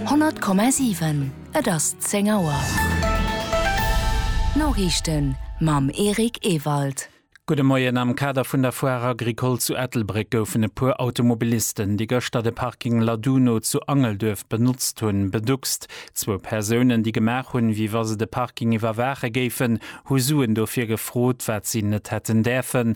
100,7 Et ass 10 Auer. D'Noriichten mam Eric Ewald. Gudde Moien. Am Kader vun der Foire Agricole zu Ettelbréck goufen e puer Automobilisten, déi gëschter de Parking Laduno zu Angelduerf benotzt hunn, beduckst. Zwou Persounen, déi gemaach hunn, wéi wa se de Parking iwwerwaache géifen, hu Suen dofir gefrot, wat si net hätten däerfen.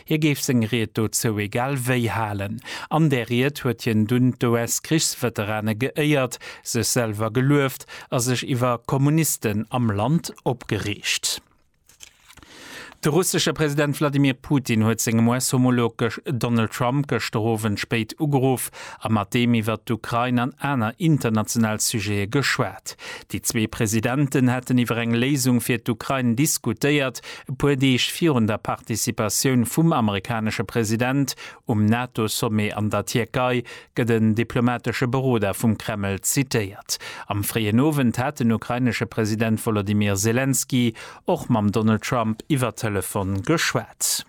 Hie géif seng Ried dozou egal wéi halen. An där Ried huet hien dunn d'US-Krichsveterane geéiert, sech selwer gelueft a sech iwwer Kommunisten am Land opgereegt. De russesche President Wladimir Putin huet sengem US-Homolog Donald Trump gëschter Owend spéit ugeruff a mat deem iwwer d'Ukrain an aner international Sujete geschwat. Déi zwee Presidenten hätten iwwer eng Léisung fir d'Ukrain diskutéiert, E puer Deeg virun der Participatioun vum amerikanesche President um NATO-Sommet an der Tierkei gëtt en diplomatesche Beroder vum Kreml zitéiert. Am fréien Owend hat den ukrainesche President Wolodymyr Selenskyj och mam Donald Trump iwwer Telefon geschwat.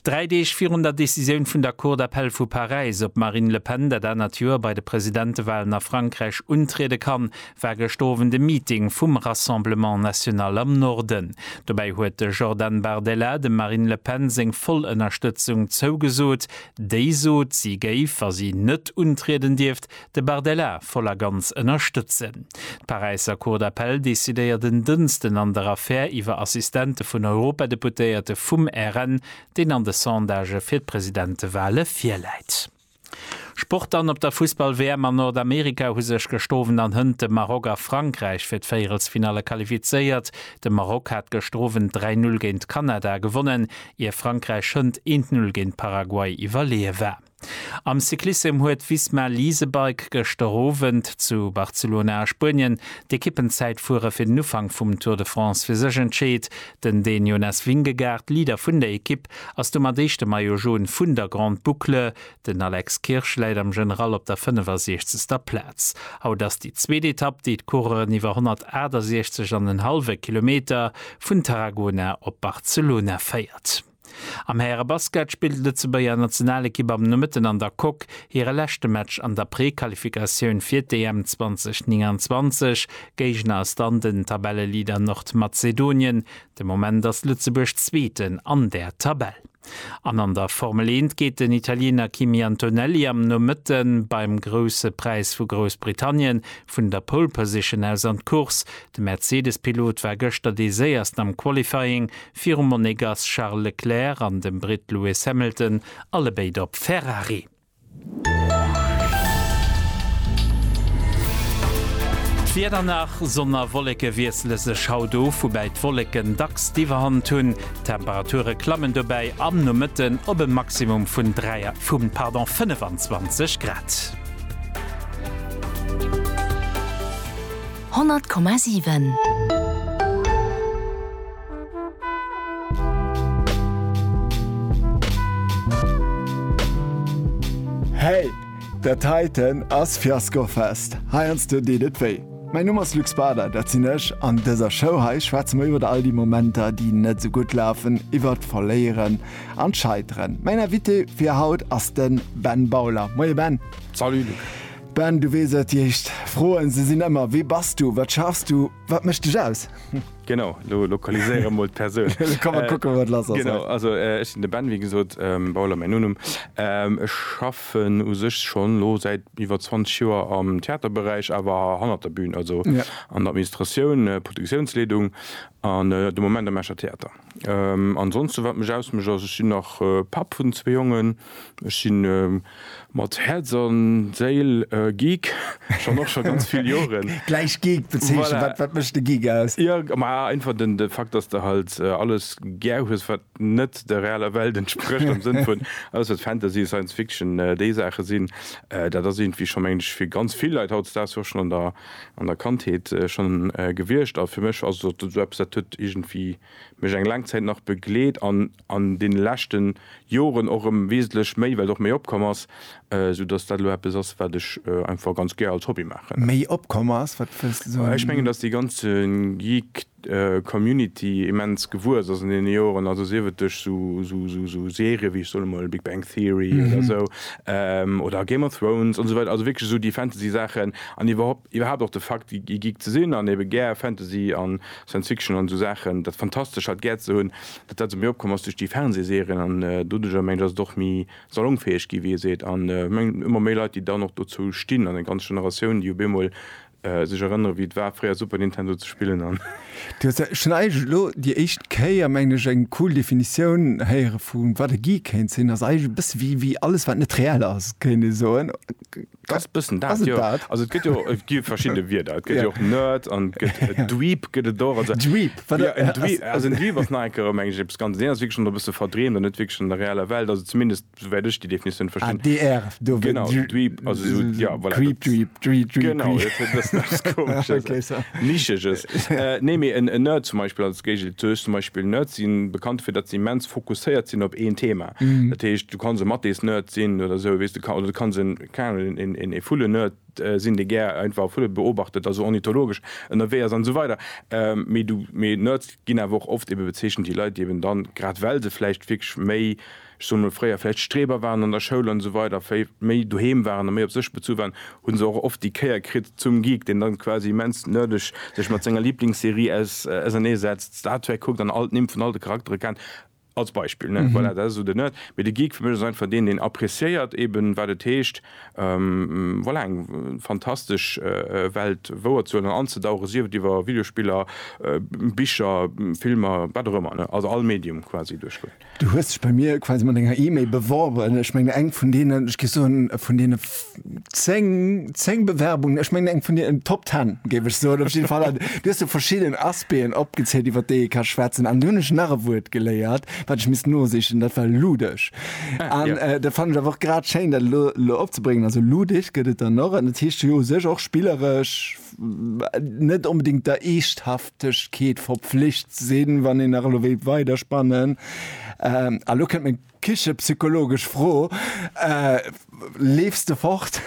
Dräi Deeg virun der Decisioun vun der Cour d'appel vu Paräis, ob d'Marine Le Pen dat anert Joer bei de Presidentewalen a Frankräich untriede kann, war gëscht Owend e Meeting vum Rassemblement National am Norden. Dobäi huet de Jordan Bardella dem Marine Le Pen seng voll Ënnerstëtzung zougesot. Déi sot, si géif, wa si net untrieden dierft, De Bardella voll a ganz ënnerstëtzen. D'Paräisser Cour d'appel decidéiert en Dënsten an der Affär iwwer Assistente vun Europadeputéierte vum RN, deen an de Sondagë fir d'Presidentewale virläit. Sport dann, Op der Fussball-WM an Nordamerika hu sech gestowen an hënt de Maroc a Frankräich fir d'Véierelsfinalle qualifizéiert. De Maroc hat gëschter Owend 3 Null géint Kanada gewonnen, ier Frankräich hënt eent Null géint Paraguay iwwerleeë war. Am Cyclissem huet Visma Leasebike gëschter Owend zu Barcelona a Spuenien d'Ekippenzäitfuere fir den Ufank vum Tour de France fir sech entscheet. Den Dän Jonas Vingegaard, Leader vun der Ekipp, ass domat éischte Maillot Jaune vun der Grande Boucle. Den Alex Kirsch läit am General op der 65. Plaz. Haut ass déi zweet Etapp, déi d'Coureuren iwwer 168 an en hallwe Kilometer vun Tarragona op Barcelona féiert. Am Härebasket spillt d'Lëtzebuerger Nationalekipp am Nomëtten an der Coque hire leschte Match an der Prequalifikatioun fir d'EM 2029. Géigner ass dann den Tabelleleader Nordmazedonien. De Moment ass Lëtzebuerg Zweeten an der Tabell. An an der Formel Eent geet den Italiener Kimi Antonelli am Nomëtten beim Grousse Präis vu Groussbritannien vun der Pole Position aus an d'Course. De Mercedes-Pilot war gëschter dee Séiersten am Qualifying, virum Monegass Charles Leclerc an dem Britt Lewis Hamilton, allebéid op Ferrari. D'Wieder nach, Sonn a Wolleke wiessele sech haut of, woubäi d'Wolleken dacks d'Iwwerhand hunn. D'Temperature klammen dobäi am Nomëtten op e Maximum vun 25 Grad. 100,7. Hey! Dat heiten ass Fiaskofest. Heiansdo deet et wéi. Mäin Numm ass Luc Bader, dat sinn ech. An dëser Show hei schwätze mer iwwer all déi Momenter, déi net esou gutt lafen, iwwer d'Verléieren an d'Scheiteren. Mäin Invité fir haut ass de Ben Bauler. Moie Ben! Salut Luc! Ben, du weess et, déi éischt Froen, se sinn ëmmer, Wie bass du? Wat schaffs du? Wat mécht dech aus? Genau, lo lokaliséiere mol d'Persoun. Elo ka mer kucken, wat lass ass. Genau, also ech sinn de Ben, wéi gesot, Bauler mäin Nonumm. Ech schaffen u sech scho lo säit iwwer 20 Joer am Theaterberäich, awer hannert der Bühn, also an der Administratioun, Produktiounsleedung an de Moment am Escher Theater. Ansonsten wat mech ausmecht ass ech sinn nach Papp vun zwee Jongen, ech sinn mat Häerz an Séil Geek schonn och scho ganz vill Joren. Gläich Geek bezeechnen, wat mécht de Geek aus? Jo ma einfach den Fakt dass de halt alles gär hues wat net der realer Welt entsprécht am Sënn vun alles wat Fantasy, Science Fiction déi Saache sinn, dat ass iergendwéi scho meng ech fir ganz vill Leit hautdesdaags och schonn an der an der Kandheet schonn gewiescht a fir mech ass et eppes, dat huet iergendwéi mech eng laang Zäit nach begleet an an deene leschte Joren och erëm wesentlech méi, well et och méi opkomm ass, soudatt dat elo eppes ass, wat ech einfach ganz gär als Hobby maachen. Méi opkomm ass? Wat wëlls de soen? Ech mengen, datt dee ganze Geek Community immens gewuess ass an deene Joren, also sief et duerch sou Serien wéi, ech soen emol, Big Bang Theory oder esou, oder Game of Thrones an esou weider, also wierklech esou déi Fantasy Saachen an iwwerhaupt och de Fakt e Geek ze sinn an ebe gär Fantasy a Science Fiction an esou Saachen, dat Fantastescht halt gär ze hunn, datt dat esou méi opkomm ass duerch déi Fernsehserien an doduerjer, mengen ech, ass et och méi salongfäeg ginn, wéi ee seet, an ëmmer méi Leit déi dann och dozou stinn an eng ganz Generatioun déi op eemol Sech erënneren wéi et war fréier Super Nintendo ze spillen an. Du hues jo schonn eigentlech elo déi éischt Kéier, mengen ech, eng cool Definitioun héiere vu wat e Geek kéint sinn. Ass eigentlech e bësse wéi wéi alles wat net reell ass, kéint ee soen. Ass e bëssen dat, jo. Ass et dat? Also et gëtt jo, et gi verschidde Wierder. Et gëtt jo och Nerd an et gëtt e Dweeb gëtt et och. Also Dweeb, wat ass. Also en Dweeb ass nach eng Kéier erëm mengen ech eppes ganz, deen ass wierklech schonn e bësse verdreemt an net wierklech an der reeller Welt. Also zumindest souwäit ech déi Definitioun verstinn. Ah, DR, do wéi Dweeb, also esou, ja, voilà. Creep, Dweeb, Dweeb, Dweeb. Genau, dat huet e bëssen eppes Komesches. Okay, so. Nischeges. Nee, mee en Nerd zum Beispill als Géigel zu ech zum Beispill, Nerds si bekannt dofir, datt se immens fokusséiert sinn op een Thema. Dat heescht, du kanns e Mathésnerd sinn oder esou, weess de, oder du kanns en, keng Ahnung, en Vullennerd sinn, dee gär einfach Vulle beobachtet, also ornithologesch ënnerwee ass an esou weider. Mee du, mee Nerds ginn awer och oft ebe bezeechent déi Leit, déi eben dann, grad well se vläicht wierklech méi, ech soen emol fréier vläicht Streber waren an der Schoul an esou weider, méi doheem waren a méi op sech bezu waren, hu se och oft déi Kéier kritt zum Geek, deen dann quasi immens nerdeg sech mat senger Lieblingsserie ausernee setzt, Star Trek kuckt an all d'Nimm vun all de Charaktere kennt, als Beispill, ne? Voilà, dat ass esou de Nerd. Mee de Geek fir mech ass einfach deen, deen appreciéiert eeben, wat et heescht, voilà, eng fantastesch Welt wouerzehuelen an anzedauchen, sief et iwwer Videospiller, Bicher, Filmer, wat och ëmmer, ne? Also all Medium quasi duerchgoen. Du hues dech bei mir quasi mat enger E-Mail beworben. Ech menge eng vun deenen, ech géif soen, vun deene 10, 10 Bewerbungen, ech menge eng vun deenen Top 10, géif ech soen, op jidde Fall. An du hues do verschidden Aspecten opgezielt, iwwer déi ee ka schwätzen. An dunn hunn ech nach e Wuert geléiert, wat ech misst nosichen, dat war ludesch. An dat fannen ech awer och grad schéin, dat elo, elo opzebréngen. Also ludesch gëtt et dann och. An dat heescht jo u sech och spilleresch, net onbedingt der Eeschthaftegkeet verpflicht sinn, wann een nach elo wéilt weiderspannen. Ähm, a lo kënnt meng kichepsychologesch Fro, äh, Leefs de fort?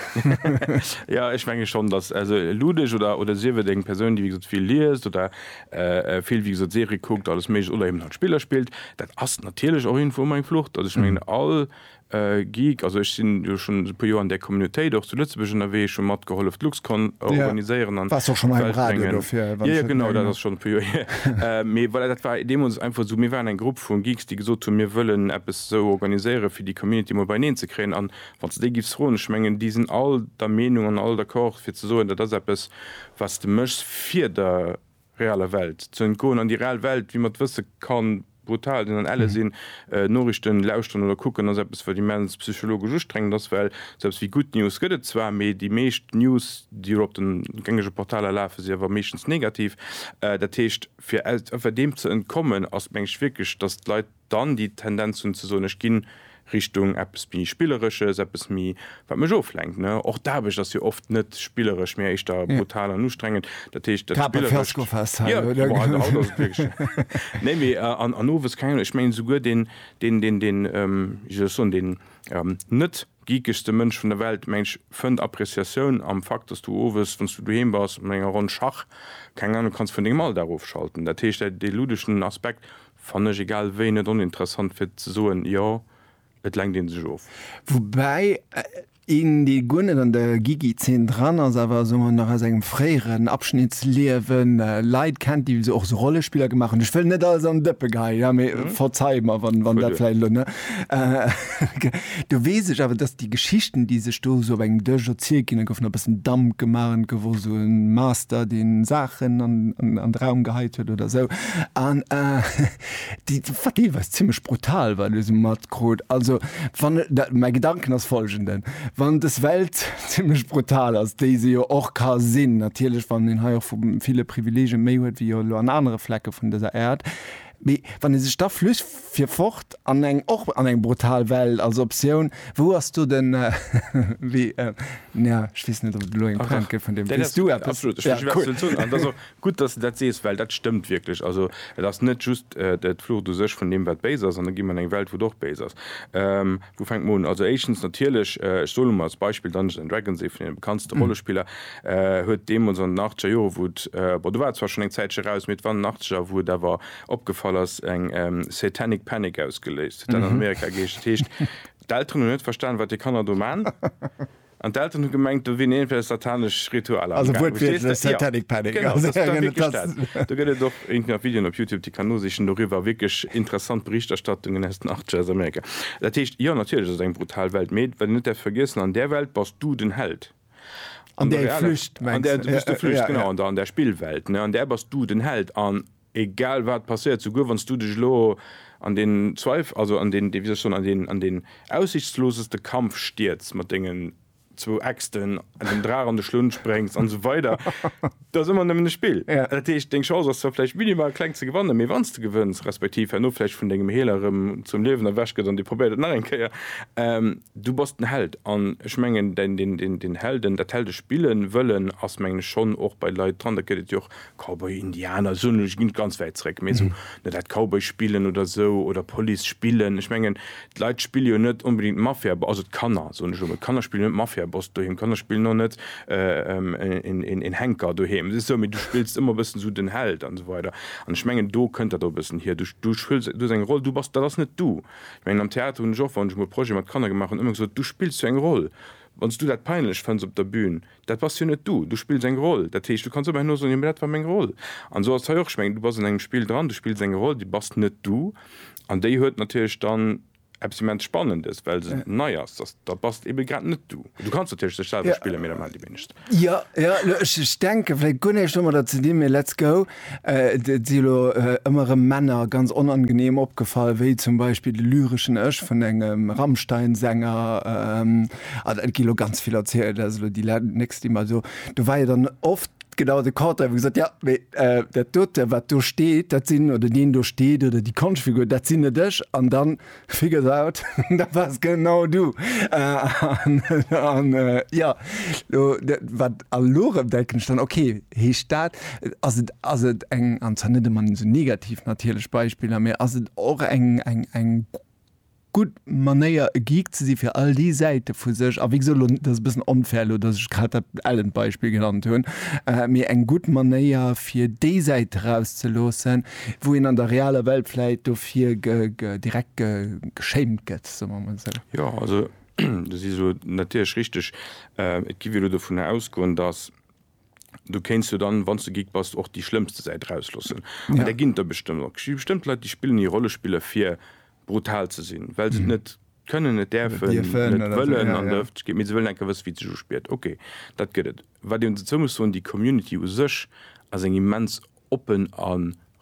Ja, ech menge schonn, datt also Ludech oder, oder sief et eng Persoun, déi wéi gesot vill liest oder äh vill wéi gesot Serie kuckt, alles Méiglecht oder eben halt Spiller spillt, dat ass natierlech och irgendwou emol eng Flucht. Also ech mengen, all Geek, also ech sinn jo schonn e puer Joer an där Communautéit och zu Lëtzebuerg ënnerwee, ech hu matgehollef d'Luxcon organiséieren an d'Welt bréngen. Jo, jo, genau, dat ass schonn e puer Joer hier. Mee voilà, dat war deemools einfach esou, mir waren eng Grupp vu Geeks, déi gesot hunn, mir wëllen eppes esou organiséieren, fir déi Community emol beineen ze kréien. An wann s de déi giffs froen, ech mengen, déi sinn all der Meenung an all d'accord, fir ze soen, dat ass eppes, wat s de méchs, fir der reeller Welt ze entgoen, an déi reell Welt, wéi mer et wësse, ka brutal sinn an elle sinn. Noriichten lauschteren oder kucken ass eppes, wat immens psychologesch ustrengend ass, well selbst wéi Good News gëtt et zwar, mee déi meescht News, déi elo op de gängege Portaler lafen, si awer meeschtens negativ. Dat heescht, fir deem ze entkommen, ass, mengen ech, wierklech, datt d'Leit, Dann déi Tendenz hunn ze soen, ech ginn Richtung eppes méi Spilleresches, eppes méi, wat mech oflenkt. Och d'Aarbecht ass jo oft net spilleresch, mä éischter brutal an ustrengend. Dat heescht, dat Spillerescht, jo, haut ass et wierklech, nee, mee an owes, keng Ahnung, ech mengen souguer deen, deen, deen, deen, wéi soll ech soen, deen net geekegste Mënsch vun der Welt, meng ech, fënnt Appréciatioun am Fakt, datt s du owes, wann s du doheem bass mat enger Ronn Schach, keng Ahnung, kanns vun dengem Alldag ofschalten. Dat heescht, dee ludeschen Aspekt Fannen ech egal wéi net oninteressant fir ze soen jo et lenkt een sech of. Woubäi een dee guer net an der Gigi Zeen dran ass awer soen mer nach aus engem fréieren Abschnitt Liewen Leit kennt déi och sou Rollespiller gemaach hunn. Ech wëll net alles an den Dëppe geheien, mee verzei mer wann dat vläicht elo ne. Do weess ech awer, dass déi Geschichten, déi sech do esou op engem Dësch erzielt ginn, da gouf nach e bëssen Damp gemaach an et gouf och esou e Master, deen Saachen an de Raum geheit huet oder esou an déi, wat deelweis zimmlech brutal war, elo esou matkrut. Also wann, mäi Gedanken ass folgenden, Wann dës Welt zimmlech brutal ass, déi se jo och ka sinn, natierlech wann een hei och vu ville Privileegien méi huet wéi jo elo an anere Flecke vun dëser Äerd, Mee wann ee sech da flücht fir fort an eng, och an eng brutal Welt als Optioun, wou ass do den, wéi, nja, ech weess net ob et elo eng Pointe gëtt vun deem, weess du eppes? Absolut, ech weess wat ze soen. An et ass och gutt, datt s de dat sees, well dat stëmmt wierklech. Also et ass net just d'Flucht u sech vun deem wat béis ass, an da gi mer an eng Welt wou et och béis ass. Wou fänkt man un? Also éischtens natierlech, ech soe lo mol als Beispill Dungeons and Dragons, ee vun deene bekanntste Rollespiller, huet deemools an den achtzeger Jore wou et, bon do war et zwar schonn eng Zäitche raus, mee et war an den achtzeger wou et awer opgefall ass, eng Satanic Panic ausgeléist. Huet dat an Amerika geheescht. Dat heescht, d'Elteren hunn net verstan, wat déi Kanner do man. An d'Elteren hu gemengt, do wier iergendwéi satanesch Ritualer am gaangen. Verstees de? Jo, dat ass da wierklech dat. Do gëtt et och iergendwéi nach Videoen op Youtube, déi kann nosichen doriwwer. Wierklech interessant Berichterstattungen aus den Achtzeger, aus Amerika. Dat heescht, jo, natierlech ass et eng brutal Welt, mee wat een net däerf vergiessen, an där Welt bass du den Held. An der realen, an där du bist de Flücht, genau, an der Spillwelt, an där bass du den Held. An Egal wat passéiert, souguer wann s du dech elo an deen Zweif-, also an deen, wéi soll ech soen, an deen, an deen aussichtsloseste Kampf stierz mat dengen zwou Äxten, an dem Draach an de Schlunn spréngs an esou weider, et ass ëmmer nëmmen e Spill. Dat heescht, deng Chance ass zwar vläicht minimal kleng ze gewannen, mee wann s de gewënns, respektiv herno vläicht vun dengem Healer erëm zum Liewen erwächt gëtt an dee probéiert et nach eng Kéier, du bass den Held. An ech mengen, deen, deen, deen, deen Helden, dat Heldespill wëllen ass mengen ech schonn och bei Leit dran. Dat gëtt et jo och Cowboy, Indianer, soen ech, geet ganz wäit zréck, mee esou net dat Cowboy spillen oder esou oder Police spillen. Ech mengen, d'Leit spille jo net onbedéngt d'Mafia, also d'Kanner, soen ech elo mol, d'Kanner spillen net Mafiaboss doheem, d'Kanner spillen och net een Henker doheem. Et ass esou, mee du spills ëmmer e bëssen esou den Held an esou weider. An ech mengen, do kënnt dat och e bëssen hier. Du, du spills, du hues eng Roll, du bass, dat ass net du. Ech mengen, am Theater hunn ech och, wann ech emol Projete mat Kanner gemaach hunn, ëmmer gesot, du spills jo eng Roll. Wann s du dat peinlech fënns op der Bühn, Dat bass jo net du. Du spills eng Roll. Dat heescht, du kanns ëmmerhin och soen, jo, mä dat war meng Roll. An esou ass et hei och. Ech mengen, du bass an engem Spill dran, du spills eng Roll, déi bass net du. An déi huet natierlech dann eppes immens Spannendes, well se nei ass, dass, da bass de ebe grad net du. Du kanns natierlech dech selwer spillen, mä dat maachen déi wéinegst. Jo, jo, ech denken vläicht guer näischt domadder ze dinn, mä let's go. Et si elo ëmmer erëm Männer ganz onangeneem opgefall, wéi zum Beispill de lyreschen Ech vun engem Rammstein-Sänger. An et gi elo ganz vill erzielt, dat ass elo déi nächst, déi mer do. Do war jo dann oft genau de Contraire, wou gesot, Jo, mee dat dote, wat do steet, dat sinn, oder deen do steet oder déi Konschtfigur, dat sinn net ech. An dann. Figures out, dat wars genau du! An jo, lo wat a lo rem denken ech dann, ok, heescht dat, ass et, ass et eng, an zwar net emmer esou negativ natierlech Beispiller, mee ass et och eng, eng, eng gutt Manéier e Geek ze si fir all déi Säite vu sech, a wéi gesot, lo dat ass e bëssen unfair elo, datt ech grad dat Ellen-Beispill genannt hunn, mee eng gutt Manéier fir déi Säit erauszeloossen, Wou een an der realer Welt vläit dofir direkt geschéimt gëtt, soe mer emol esou. Jo, also do si se natierlech richteg. Et gi wéi elo dovunner ausgoen, datt du kéints jo dann, wann s de Geek bass, och déi schlëmmste Säit erausloossen. An där ginn et der bestëmmt och. Et gi bestëmmt Leit, déi spillen hir Rollespiller, fir brutal ze sinn, well se et net kënnen, net däerfen, net wëllen an der Ëffentlechkeet, mee se wëllen enker wësse wéi et sech uspiert. Ok, dat gëtt et. Wat een dozou muss soen, déi Community u sech ass eng immens oppen a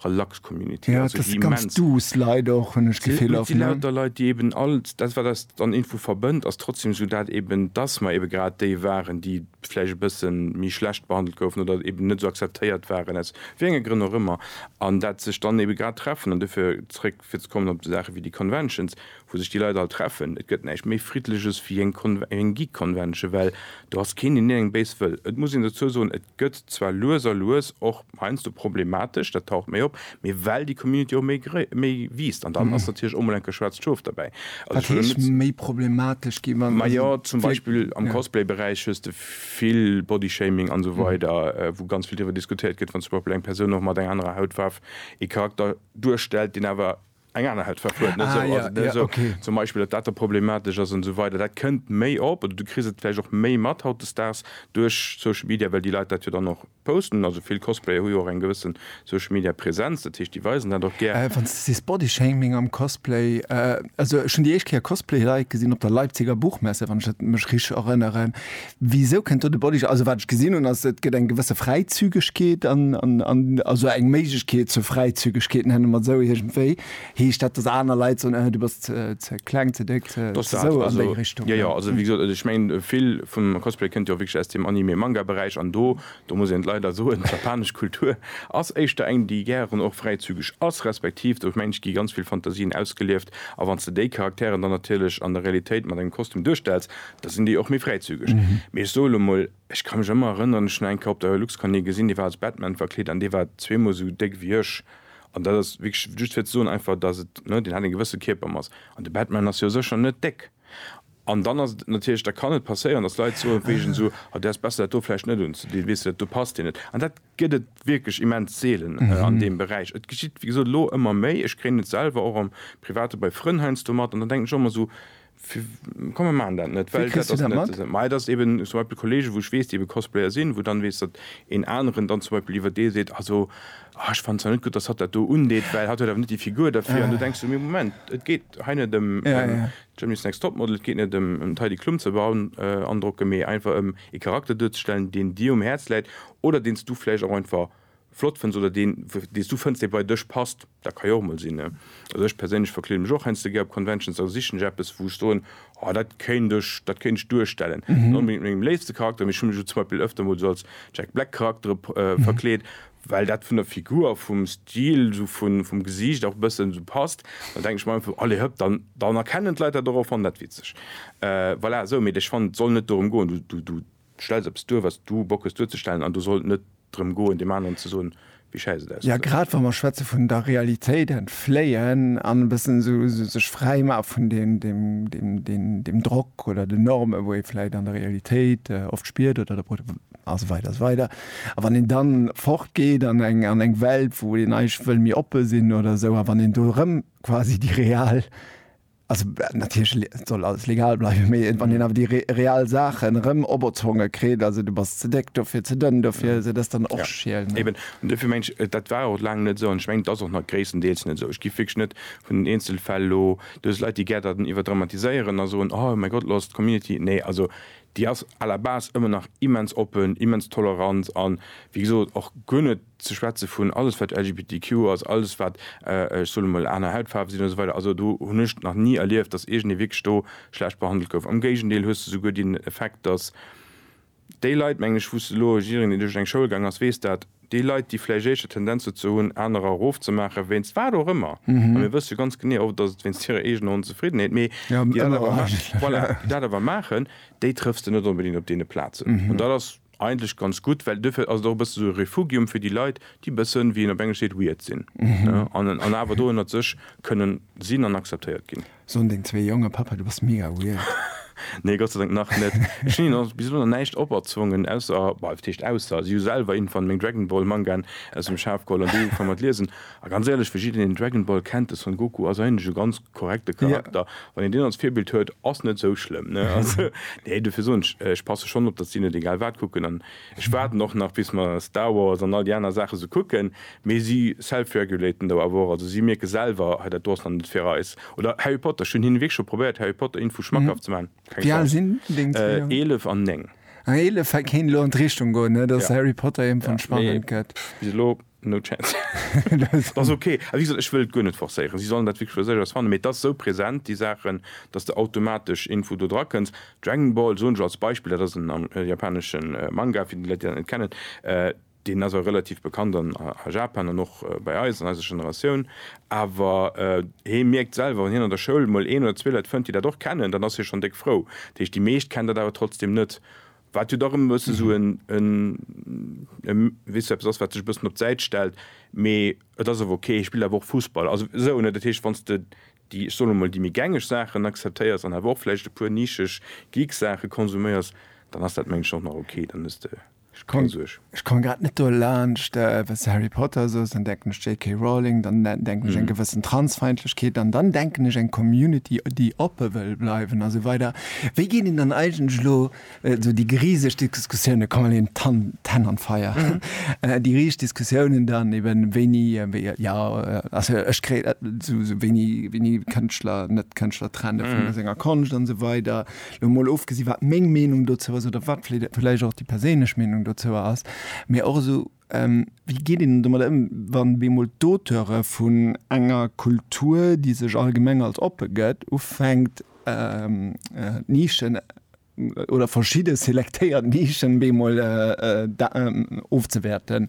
relax Community. Ja, et ass ganz duuss Leit och, hunn ech d'Gefill oft, ne? Et si lauter Leit, déi eben all dat, wat eis an Info verbënnt, ass trotzdem esou dat eben, dass mer ebe grad déi waren, déi vläicht e bësse méi schlecht behandelt goufen oder eben net esou akzeptéiert waren, aus wéi enge Grënn och ëmmer, an dat sech dann ebe grad treffen. An dofir, zréck fir ze kommen op esou Saache wéi déi Conventions, wou sech déi Leit all treffen, et gëtt näischt méi friddleches wéi eng Geek Convention, well do ass keen deen hienem béis wëll. Et muss een dozou soen, et gëtt zwar lues a lues och heiansdo problematesch, dat taucht méi op, mee well déi Community och méi wiisst, an dann ass natierlech och mol enk e schwaarzt Schof derbäi. Wat heescht méi problematesch ginn? Wann se Majo, zum Beispill am Cosplay Beräich hues de vill Body Shaming an esou weider, wou ganz vill driwwer diskutéiert gëtt, wann zum Beispill eng Persoun och mat enger anerer Hautfaarf ee Charakter duerstellt, deen awer Eng aner hält verfuert, net esou. Also net esou zum Beispill, datt dat da problematesch ass an esou weider. Dat kënnt méi op oder du kriss et vläicht och méi mat hautdesdaags duerch Social Media, well déi Leit dat jo dann och posten. Also vill Cosplayer hu jo och eng gewësse Social Media Presenz, dat heescht déi weisen dat och gär. Wann s de sees Bodyshaming am Cosplay, also ech hunn déi éischt Kéier Cosplay-Leit gesinn op der Leipziger Buchmesse, wann ech dat mech richteg erënneren, Wisou kënnt do de Body Shop? Also wat ech gesinn hunn ass, et gëtt eng gewësse Fräizügegkeet an, an, an, also eng Méiglechkeet zur Fräizügegkeet, nenne mer et esou iergendwéi. Heescht dat, datt aner Leit soen, Äh, du bass ze, ze kleng, ze déck, ze, ze esou, an déi Richtung? Jo, jo, also wéi gesot, ech mengen vill vum Cosplay kënnt jo wierklech aus dem Anime, Manga Beräich an do, do muss een et leider soen, d'japanesch Kultur ass éischter eng déi gären och fräizügeg ass, respektiv do mengen ech gi ganz vill Fantasien ausgelieft a wann s de déi Charakteren dann natierlech an der Realitéit mat engem Kostüm duerstells, Da sinn déi och méi fräizügeg. Mee ech soe lo mol, ech ka mech ëmmer erënneren, ech hunn eng Kéier op der HeluxCon ee gesinn, dee war als Batman verkleet an dee war zweemol esou déck wéi ech. An dat ass wierklech just fir ze soen einfach, dass et, ne, deen hat eng gewësse Kierpermass. An de Batman ass jo sécher net déck. An dann ass et natierlech, da kann et passéieren, dass Leit soen, wéi ech en esou, ah, däers besser dat do vläicht net unzedinn, weess de, dat do passt dir net. An dat gëtt et wierklech immens seelen an deem Beräich. Et geschitt, wéi gesot, elo ëmmer méi. Ech kréien et selwer och am Private bei Frënn heiansdo mat an dann denken ech och ëmmer esou, Komm mer maachen dat net, well dat ass net esou. Majo, et ass eben zum Beispill Kollegen, wou ech weess, déi ebe Cosplayer sinn, wou dann weess, datt een aneren dann zum Beispill iwwer dee seet, also ah, ech fannen zwar net gutt, datt hatt dat do undeet, well hatt huet awer net déi Figur derfir. An du denks du, mee Moment, et geet hei net ëm Germany's Next Topmodel, et geet net ëm d'Heidi Klum ze beandrocken, mee einfach ëm ee Charakter duerzestellen, deen dir um Häerz läit oder deen s du vläicht och einfach flott fënns oder deen, deen s du fënns, dee bei dech passt, dat ka jo och emol sinn. Also ech perséinlech verkleede mech och heiansdo gär op Conventions, also sichen ech eppes, wou ech soen, oh dat kéint ech, dat kéint ech duerstellen. Net onbedéngt mengem léifste Charakter, mee ech hunn mech elo zum Beispill ëfter mol esou als Jack Black Charaktere verkleet, well dat vun der Figur a vum Stil, esou vun, vum Gesiicht och e bëssen esou passt. Da denken ech mer einfach, allez hëpp, dann, dann erkennen d'Leit dat och a fannen dat witzeg. Voilà, esou. Mee ech fannen, et soll net dorëm goen, du, du, du, Stells eppes duer, wat s du Bock hues duerzestellen, an do soll et net drëm goen, deem aneren ze soen, wéi schäiss et ausgesäit. Grad wa mer schwätze vun der Realitéit entfléien an e bëssen esou sech fräi maache vun deem Drock oder den Normen, wou ee vläicht an der Realitéit oft spiert, oder de Pro, a sou weider a sou weider. A wann een dann fort geet an eng Welt, wou een eigentlech wëll méi oppe sinn oder esou, a wann een do erëm quasi déi real Also natierlech soll alles legal bleiwen, mee wann een awer déi real Saachen erëm operzwonge kritt, also du bass ze déck dofir, ze dënn dofir, also dat ass dann och schiel. Eben, an dofir mengen ech, dat war och laang net esou an ech mengen, et ass och nach gréisstendeels net esou. Ech giff wierklech net vun den Eenzelfäll elo, do ass Leit, déi gär dat iwwerdramatiséieren a soen, oh mäi Gott, elo ass d'Community, nee, also déi ass à la base ëmmer nach immens oppen, immens tolerant a wéi gesot och guer net, ze schwätze vun alles wat LGBTQ ass, alles wat, ech soen emol, aner Hautfaarwe sinn, esou weider, also do hunn ech nach ni erlieft, datt iergendee wierklech do schlecht behandelt gouf. Am Géigendeel hues de souguer deen Effekt, datt déi Leit, mengen ech, wou s de elo, jiddereen deen duerch eng Schoul gaang ass weess dat, déi Leit déi vläicht éischter Tendenz dozou hunn anerer erofzemaachen, wéinst wat och ëmmer, a mir wësse ganz genee, oft ass et wéinst hirer eegener Onzefriddenheet, mee déi dat awer, voilà, déi dat awer maachen, déi trëffs de net onbedéngt op deene Plazen, an dat ass. Eigentlech ganz gutt, well duerfir ass et och e bësse sou e Refugium fir déi Leit, déi e bëssen, wéi een op Englesch seet, weird sinn, ne, an an awer do ënnert sech kënnen sinn an akzeptéiert ginn. Soen deng zwee Jongen, Papa, du bass mega weird? Nee, Gott sei Dank nach net. Ech hunn hinnen bis elo nach näischt operzwongen, ausser, bah, wat heescht ausser, si hu selwer een van meng Dragon Ball Mangaen aus dem Schaf geholl an déi ugefaang mat liesen. A ganz éierlech, fir jiddereen deen Dragon Ball kennt, de Son Goku ass eigentlech e ganz korrekte Charakter. Wann een deen als Virbild huet, ass net esou schlëmm, ne? Also, nee, dofir soen ech, ech passe schonn op, datt si net egal wat kucken an ech waarden och nach bis mer Star Wars an all déi aner Saache sou kucken, mee si self-regulaten do awer och, also si mierke selwer, hei dat do ass nach net fir eis. Oder Harry Potter, ech hunn hinnen wierklech scho probéiert Harry Potter Info schmackhaft ze maachen, keng Chance. Wéi al sinn deng zwee Jongen? Eelef an néng. Ah, eelef, hei kéint elo an d'Richtung goen, ne, datt Harry Potter iergendwann spannend gëtt. Pff, bis elo. No chance. Dat ass ok. A wéi gesot, ech wëll et guer net forcéieren. Si sollen dat wierklech fir sech aus fannen. Mee et ass esou present, déi Saachen, datt s de automatesch iergendwou do drakënns. Dragon Ball, soen ech als Beispill, dat ass en japanesche Manga, fir déi Leit, déi dat net kennen. Deen ass och relativ bekannt a Japan an och bei eis, an eiser Generatioun. Awer hie mierkt selwer, wann hien an der Schoul emol een oder zwee Leit fënnt, déi dat och kennen, dann ass hie schonn déck frou. Dat heescht, déi meescht kennen dat awer trotzdeem net. Wat jo dach ëm e bëssen esou e weess eppes ass, wat sech e bëssen op d'Säit stellt, mee et ass awer ok. Hie spillt awer och Fussball, also esou, ne? Dat heescht, wann s de déi, ech soen emol, déi méi gängeg Saachen akzeptéiers an awer och vläicht e puer nischeg Geek-Saache konsuméiers, dann ass dat, mengen ech, och nach ok. Dann hues de keng Suerg. Ech komme grad net dolaanscht, wann s de Harry Potter sos, dann denken ech JK. Rowling, dann denken ech eng gewëssen Transfeindlechkeet an dann denken ech eng Community, déi oppe wëll bleiwen a sou weider. Wéi geet een dann eigentlech elo esou déi griseg Diskussiounen, komm elo een d'Hänn an d'Feier, déi riseg Diskussiounen dann eben, wéini, jo, also ech kréien esou wéini Kënschtler, Net-Kënschtler trenne vun senger Konscht an esou weider, Lo mol ofgesi wat meng Meenung dozou ass oder wat vläicht och déi perséinlech Meenung dozou ass, mee och esou wéi geet een domat ëm, wann bemol d'Auteure vun enger Kultur, déi sech allgemeng als oppe gëtt, ufänkt d'Nischen oder verschidde selektéiert Nischen bemol ofzewäerten.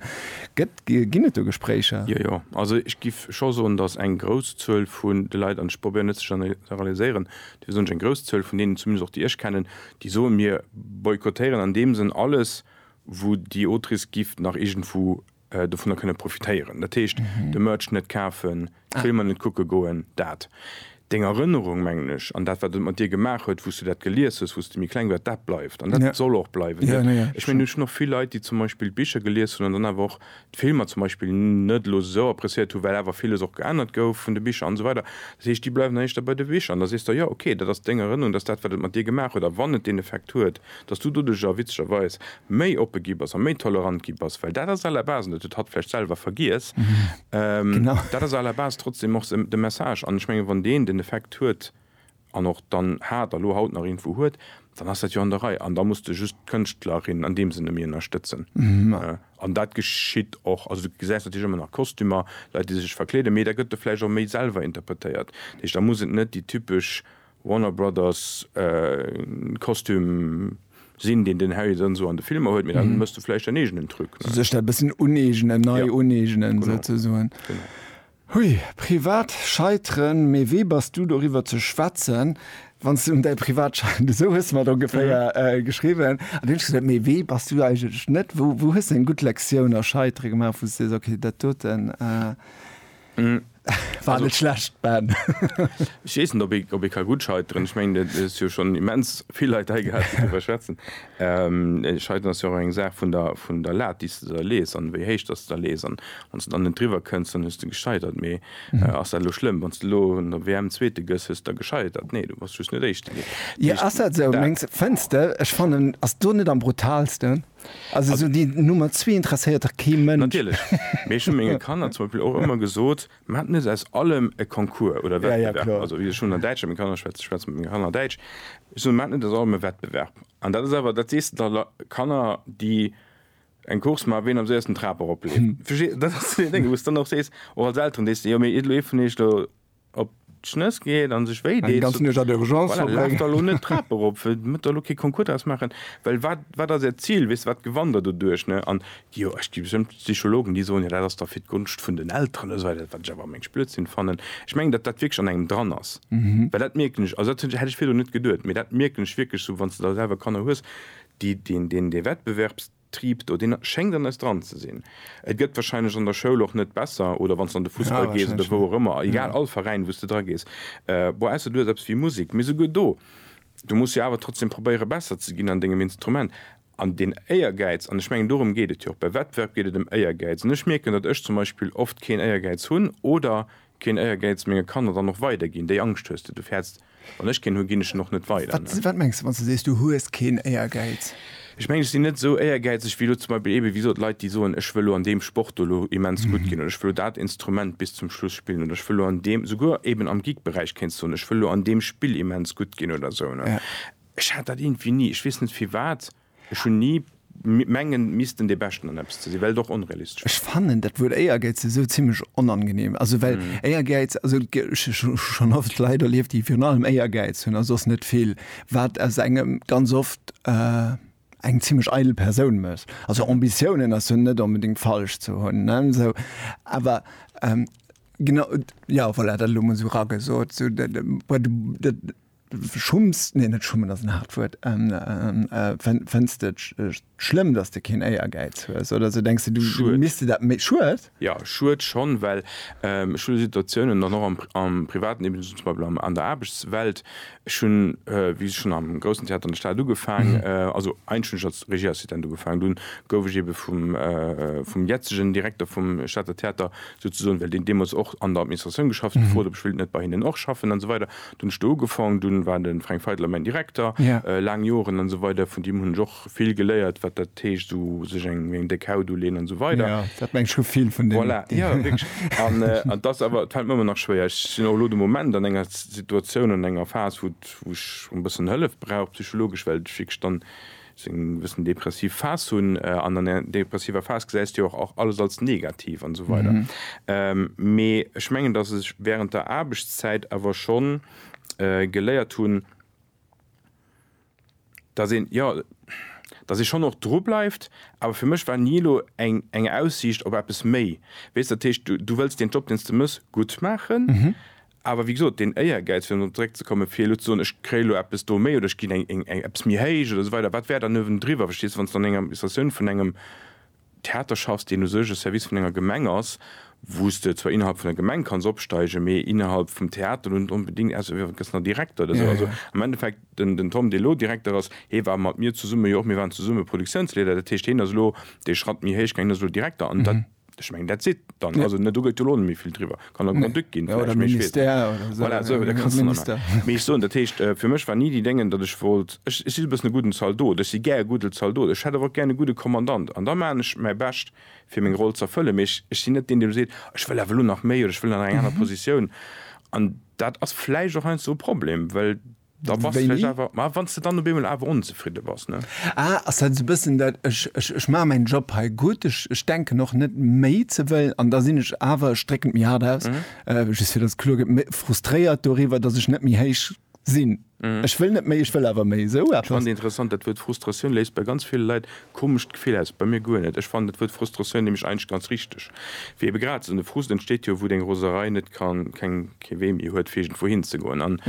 Ginn et do Gespréicher? Jo, jo. Also ech géif scho soen, datt eng grouss Zuel vun de Leit, an ech probéieren net ze generaliséieren, Dofir soen ech, eng grouss Zuel vun deenen, zumindest och déi ech kennen, déi soen, mir boykottéieren an deem Sënn alles, wou déi Autrice giff nach iergendwou dovunner kënne profitéieren. Dat heescht, de Merch net kafen, d'Filmer net kucke goen. Dat. Deng Erënnerung, mengen ech, an dat, wat et mat dir gemaach huet, wou s du dat gelies hues, wou s de méi kleng wars, dat bleift an dat soll och bleiwen. Ech mengen, ech hunn och vill Leit, déi zum Beispill d'Bicher gelies hunn an dann awer och d'Filmer zum Beispill net elo esou appreciéiert hu well awer villes och geännert gouf vun de Bicher an esou weider. Dat heescht déi bleiwen dann éischter bei de Bicher an da sees de jo ok dat ass deng Erënnerung, dat ass dat wat et mat dir gemaach huet a wann et deen Effekt huet datt s du doduerjer witzegerweis méi oppe gi bass a méi tolerant gi bass well dat ass à la base an dat huet hatt vläicht selwer vergiess dat ass à la base trotzdem och de Message an ech menge wann deen den Effekt huet an och dann hat a lo haut nach irgendwou huet, dann ass dat jo an der Rei an da muss de just d'Kënschtlerin an deem Sënne méi ënnerstëtzen. An dat geschitt och. Also du gesäis natierlech ëmmer nach Kostümer, Leit déi sech verkleeden, mee da gëtt e vläicht och méi selwer interpretéiert. Dat heescht, da muss et net déi typesch Warner Brothers Kostüm sinn, deen den Harry dann esou an de Filmer huet, mee da méchs de vläicht däin eegenen Truc. Sech dat e bëssen uneegnen, nei uneegnen souzesoen. Hui, privat Scheiteren, mee wee bass du doriwwer ze schwätzen, wann s de un däi privat scheitert, esou hues de mer et ongeféier geschriwwen. An du hunn gesot, mee wee bass du eigentlech net, wou wou hues de eng gutt Lektioun a Scheitere gemaach, wou s de sees, okay, dat doten war net schlecht, Ben. Ech weess net, ob ee ka gutt scheiteren. Ech mengen, et huet jo schonn immens vill Leit hei gehat, déi doriwwer schwätzen. D'Scheiteren ass jo och eng Saach vun der Lat, déi s de der lees an wéi héich dass de der lees. An wann s de dann net driwwer kënns, dann hues de gescheitert. Mee ass dat elo schlëmm? Wann s de elo an der WM Zweete gëss, hues de da gescheitert? Nee, du bass just net Éischte ginn. Jo, ass dat esou? Mengs de? Fënns de? Ech fannen, ass do net am brutaalsten? Also esou déi Nummer zwee interesséiert dach kee Mënsch. Natierlech. Mee ech hu menge Kanner zum Beispill och ëmmer gesot, Mir haten net aus allem e Concours oder Wettbewerb. Also ech hunn an Däitsch mat menge Kanner geschwätzt, ech schwätze mat menge Kanner Däitsch. Ech soen, mir haten net aus allem e Wettbewerb. An dat ass awer, dat sees de da Lei, Kanner, déi eng Course maachen, wien am séiersten d'Trap eropleeft. Versteet? Dat ass sou een Déng, wou s de dann och sees, och als Elteren, dees de, jo mee iert lo ee vun iech do op. d'Schnëss geet an sech wéi deet, voilà, laaft der elo net d'Trap erop, métt der elo kee Concours draus maachen, well wat, wat ass Äert Zil, weess de, wat gewannt Der doduerch? Ne? An jo, ech gi bestëmmt Psychologen, déi soen, jo, dat ass da fir d'Gonscht vun den Elteren oder esou weider, wat ech awer am mengegst Blödsinn fannen. Ech mengen, datt dat wierklech an engem dran ass, well dat mierken ech, also dat hätt ech virdrun net geduet, mee dat mierken ech wierklech sou, wann s de da selwer Kanner hues, déi deen, deen, dee Wettbewerbs. Triip do, deen schéngt an eis dran ze sinn. Et gëtt wahrscheinlech an der Schoul och net besser oder wann s de an de Fussball gees oder wou och ëmmer, egal, all Veräin wou s de dra gees, bon, ausser du hues eppes wéi Musek, mee souguer do, du muss jo awer trotzdem probéiere besser ze ginn an dengem Instrument. An deen Éiergäiz, an ech mengen dorëm geet et jo och, bei Wettbewerb geet et ëm Éiergäiz, an ech mierken, datt ech zum Beispill oft keen Éiergäiz hunn oder keen Éiergäiz menge Kanner dann och weiderginn, déi Angscht hues de, du fäerts, Wann ech keen hu ginn ech en och net weider. Wat mengs de wann s de sees du hues keen Éiergäiz? Ech mengen ech sinn net esou éiergäizeg wéi elo zum Beispill eebe wéi gesot Leit déi soen, ech wëll elo an deem Sport do elo immens gutt ginn oder ech wëll elo dat Instrument bis zum Schluss spillen oder ech wëll elo an deem, souguer eeben am Geek-Beräich kéints du soen, ech wëll elo an deem Spill immens gutt ginn oder esou ne. Ech hat dat iergendwéi ni, ech weess net firwat. Ech hun ni mengen missten dee Beschten an eppes ze sin, well et och onrealistesch wär. Ech fannen dat Wuert Éiergäiz esou zimlech onangenehm. Also well Éiergäiz, also ech hu schonn oft Leit erlieft, déi virun allem Éiergäiz hunn a soss net vill, wat aus engem ganz oft eng zimlech eidel Persoun mécht. Also Ambitiounen ass jo net onbedéngt falsch ze hunn, ne? Esou, awer genau, jo voilà, dat elo mol esou eragesot, esou dat, Schumms, nee net schummen ass en haart Wuert, fënns de et schlëmm, datt de keen Éiergäiz hues oder sou? Denks de, du misste dat méi, Schued? Jo, Schued schonn, well ech hu Situatiounen dann och am Privaten, eben zum Beispill an der Aarbechtswelt, ech hunn, wéi ech schonn am Groussen Theater an der Stad ugefaangen, also eigentlech hunn ech als Regieassistent ugefaangen, dunn gouf ech ebe vum jetzegen Direkter vum Stater Theater souzesoen, well deen deemools och an der Administratioun geschafft huet, gefrot, ob ech wéilt net bei hinnen och schaffen an esou weider. Dunn hunn ech do ugefaang, dunn war de Fränk Feidler mäin Direkter laang Joren an esou weider. Vun deem hunn ech och vill geléiert, wat dat heescht, esou sech eng eng déck Haut uleeën an esou weider. Dat mengt scho vill vun deem. Voilà, jo, wierklech. An et ass awer, et fält mer ëmmer nach schwéier. Ech sinn och elo de Moment an enger Situatioun, an enger Phas, wou et, wou ech e bëssen Hëllef brauch, psychologesch, well ech wierklech dann, se eng bëssen depressiv Phas hunn, an an der depressiver Phas gesäis de jo och alles als negativ an esou weider. Mee ech mengen, datt ech während der Aarbechtszäit awer scho geléiert hunn, datt een, jo, datt ee schonn och dru bleift, awer fir mech war ni elo eng eng Aussiicht op eppes méi, weess. Dat heescht, du wëlls deen Job, deen s de méchs, gutt maachen, Awer wéi gesot, deen Éiergäiz, fir dorop zeréckzekommen, fir elo ze soen, ech kréie lo eppes do méi oder ech ginn eppes méi héich oder esou weider, wat wär dann uewendriwwer? Verstees de, wann s de an enger Administratioun vun engem Theater schaffs, deen u sech e Service vun enger Gemeng ass, wou s de zwar innerhalb vun der Gemeng kanns opsteigen, mee innerhalb vum Theater elo net onbedéngt, außer du gëss nach Direkter oder esou. Also am Endeffekt, den den Tom, dee lo Direkter ass, hee war mat mir zesumme, jo och, mir waren zesumme Produktiounsleeder, dat heescht, hien ass elo dee Schratt méi héich gaangen, hien ass elo Direkter an dat, Ech mengen that's it dann ja. also, ne, du gëtt lo net méi vill driwwer kann der Grand-Duc nee. ginn ja, oder Ministère oder so. Voilà, so, da kannst du Minister. Mee ech soen, dat heescht äh, fir mech war ni déi Déngen, datt ech wollt ech, ech si e bëssen e gudden Zaldot, ech si gär e gudde Zaldot, ech hätt awer och gär e gudde Kommandant an da maachen ech mäi Bescht fir meng Roll z'erfëllen, mee ech, ech sinn net deen, dee lo seet, ech wëll awer lo nach méi oder ech wëll an eng aner Positioun an dat ass vläicht och heiansdo e Problem, well Da bass du vläicht awer, ma wann s de dann op eemol awer onzefridde bass, ne? Ah, ass dat esou e bëssen dat, ech, ech, ech maache mäin Job hei gutt, ech, ech denken och net méi ze wëllen an da sinn ech awer, ech drécken et méi haart aus, just fir datt et kloer gëtt, méi frustréiert doriwwer, datt ech net méi héich sinn. Ech wëll net méi, ech wëll awer méi. Esou eppes. Spannend, interessant, dat Wuert Frustratioun léist bei ganz ville Leit Komescht Gefill aus, bei mir guer net. Ech fannen dat Wuert Frustratioun nämlech eigentlech ganz richteg, wéi ebe grad esou. De Frust entsteet jo, wou deng Roserei net kann, keng, kee Wee méi huet fir iergendwou hin ze goen. An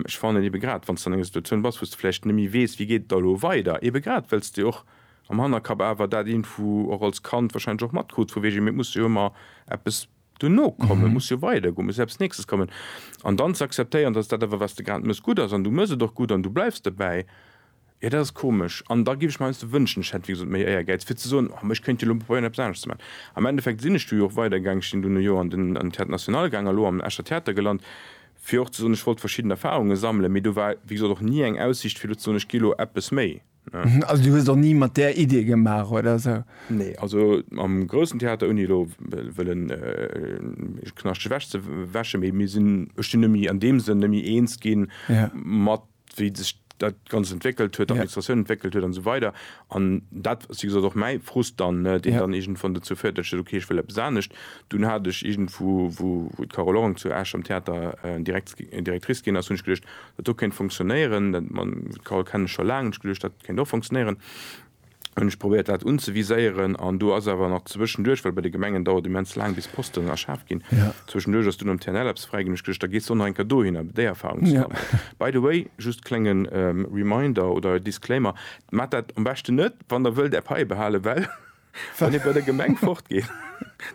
ech fannen ebe grad, wann s de an enger Situatioun bass, wou s de vläicht net méi weess, wéi geet et da elo weider, ebe grad well s de och am Hannerkapp awer dat iergendwou och als Kand wahrscheinlech och matkruts vu wegen, mee et muss jo ëmmer eppes duerno kommen, et muss jo weider goen, et muss jo eppes Nächstes kommen. An dann ze akzeptéieren, dass dat awer, wat s de grad mëss, gutt ass an du mëss et och gutt an du bleiws dobäi. Jo, dat ass komesch. An da géif ech mer heiansdo wënschen, ech hätt, wéi gesot, méi Éiergäiz, fir ze soen, oh, mä ech kéint jo elo probéieren, eppes aneschters ze maachen. Am Endeffekt sinn ech du jo och weidergaangen. Ech sinn dunn e Joer an den Théâtre National gaangen a lo am Escher Theater gelant, fir och ze soen, ech wollt verschidden Erfahrunge sammelen. Mee do war, wéi gesot, och ni eng Aussicht, fir elo ze soen, ech gi lo eppes méi, ne. Also du hues och ni mat där Idee gemaach oder esou? Nee, also am groussen Theater, ouni elo wëllen Knascht ewech ze wäschen, mee mir sinn, ech sinn nëmme méi an deem Sënn nëmme méi eens gi mat wéi sech dat Ganzt entwéckelt huet, d'Administratioun entwéckelt huet an esou weider. An dat ass wéi gesot och mäi Frust dann, deen dann iergendwann dozou féiert, datt ech sot, okay, ech wëll eppes anescht. Dunn hat ech iergendwou, wou d'Carole Orang zu Esch am Theater Directrice ginn ass, hunn ech geduecht, dat do kéint funktionéieren. D'Carole kennen ech scho laang, hunn ech geduecht, dat kéint och funktionéieren. hunn ech probéiert dat unzeviséieren an do ass awer nach zwëschenduerch, well bei de Gemengen dauert immens laang bis Posten erschaf ginn, zwëschenduerch ass dunn am TNL eppes fräi ginn. Ech gescht da gees de nach eng Kéier dohinner déi Erfahrung ze man. By the way, just klénge Reminder oder Disclaimer, Maacht dat am beschten net, wann der wëllt är Paie behalen, well wann ee bei der Gemeng fortgeet,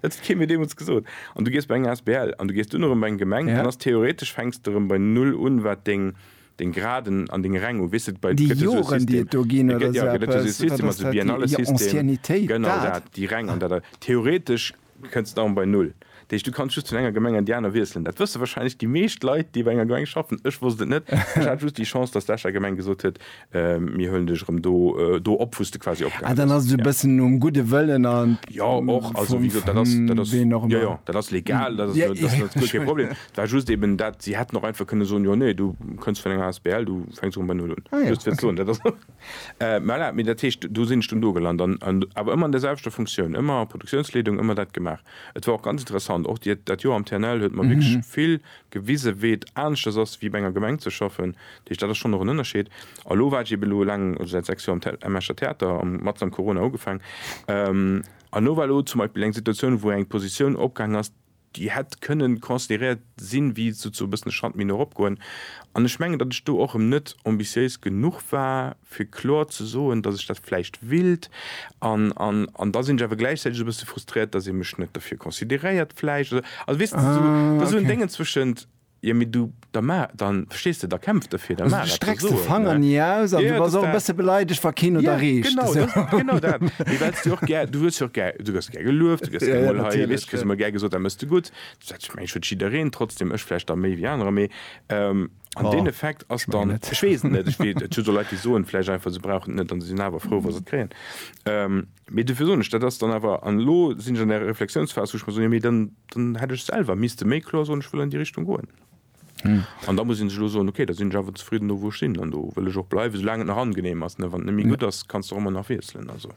dat huet kee mir deemools gesot, an du gees bei eng asbl an du gees dunn erëm bei eng Gemeng, dann ass theoretesch fänks de erëm bei Null un wat deng Deng Graden an deng Räng u, weess de. Déi Joren, déi et do ginn, oder esou eppes? Wat ass dat? Déi Anciennitéit, dat? Genau dat, déi Räng an dat. Theoretesch kënns d'Arm bei Null. Dat heescht, du kanns just vun enger Gemeng an déi aner wiesselen. Dat wësse wahrscheinlech déi meescht Leit, déi bei enger Gemeng schaffen. Ech wosst et net. Ech hat just déi Chance, dass d'Escher Gemeng gesot huet, Mir huelen dech erëm do, do op, wou s de quasi opgehal hues. Ah, dann ass et esou e bëssen nom gudde Wëllen an. Jo, och. Also, wéi gesot, dat ass, dat ass. Ween och ëmmer. Jo, jo, dat ass legal. Dat ass, dat ass guer kee Problem. Et war just eben dat, si hätten och einfach kënne soen, jo nee, du kënns vun enger asbl, du fänks erëm bei Null un. Ah jo, Just fir ze soen, dat ass. Äh, voilà, mee dat heescht, do sinn ech dunn do gelant an, an awer ëmmer an där selwechter Funktioun, ëmmer Produktiounsleedung, ëmmer dat gemaach. Et war och ganz interessant, och déi, dat Joer am TNL huet mer wierklech vill gewise wéi et aneschters ass wéi bei enger Gemeng ze schaffen. Dat heescht, dat ass schonn och en Ënnerscheed. A elo war ech eben elo eleng, also säit sechs Joer am Escher Theater, am, matzt am Corona ugefaangen, an elo war elo zum Beispill eng Situatioun, wou eng Positioun opgaangen ass, déi hätt kënnen consideréiert sinn, wéi souze e bëssen e Schratt méi no erop goen, an ech mengen, datt ech do och erëm net ambitiéis genuch war, fir kloer ze soen, datt ech dat vläicht willt, an, an, an da sinn ech awer gläichzäiteg e bësse frustréiert, datt ee mech net derfir consideréiert vläicht, oder, also weess de, da sinn esou Déngen zwëschent. Jo mee du, da maach, da, verstees de, da kämpf derfir, da maach eppes, so, ne. Also du strecks de Fanger ni aus an du bass och e bësse beleidegt wa keen huet erreecht, esou. Jo genau, genau dat, mee well s de och gär, du hues jo och gär, du gëss gär gelueft, du gëss gär mol hei, weess du, kriss emol gär gesot dat mëss de gutt, dat mengen ech huet jiddereen, trotzdem ech vläicht da méi wéi anerer, mee an deen Effekt ass dann, ech weess et net, ech wee, et gëtt jo Leit déi soen vläicht einfach se brauchen et net an se sinn awer frou wa se et kréien. Mee dofir soen ech, dat ass dann awer, an elo sinn ech an der Reflexiounsphas, wou ech mer soen, jo mee dann, dann hätt ech selwer misste méi kloer soen, ech wëll an déi Richtung goen. An da muss een sech elo soen, okay, da sinn ech awer zefridden do wou ech sinn an do wëll ech och bleiwen, soulaang et nach angenehm ass. Wann et net méi gutt ass, kanns de och ëmmer nach wiesselen. Also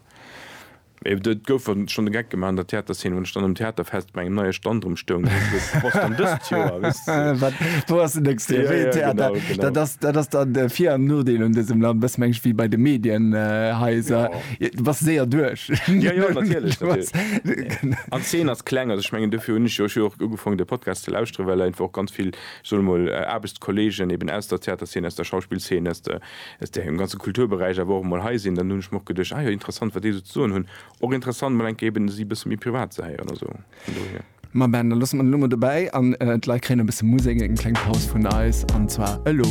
et gouf schonn de Geck gemaach an der Theaterzeen, wann ech dann um Theaterfest bei engem neie Stand rëm stoung, dann heescht et, wou ass dann dëst Joer, weess de. Wat, wou ass den nächste Joer, wéi een Theater? Dat ass, dat ass dann de Vir an Nodeel un dësem Land, e bësse mengen ech wéi bei de Medienhaiser. Bass séier duerch. Jo, jo, natierlech, natierlech. An d'Zeen ass kleng. Also, ech mengen, dofir hunn ech jo och jo och ugefaangen, de Podcast ze lauschteren, well einfach och ganz vill, ech soe mol, Aarbechtskollegen eben aus der Theaterzeen, aus der Schauspillzeen, aus der, aus dem ganze Kulturberäich awer och emol hei sinn. Dann hunn ech mer och geduecht, Ah jo, interessant, wat déi esou ze soen hunn. Och interessant, mol eng Kéier eben si e bësse méi privat ze héieren. Also vun dohier. Ma ben, da loosse mer den elo mol dobäi an d'Leit kréien e bësse Musek, eng kleng Paus vun eis, an zwar elo.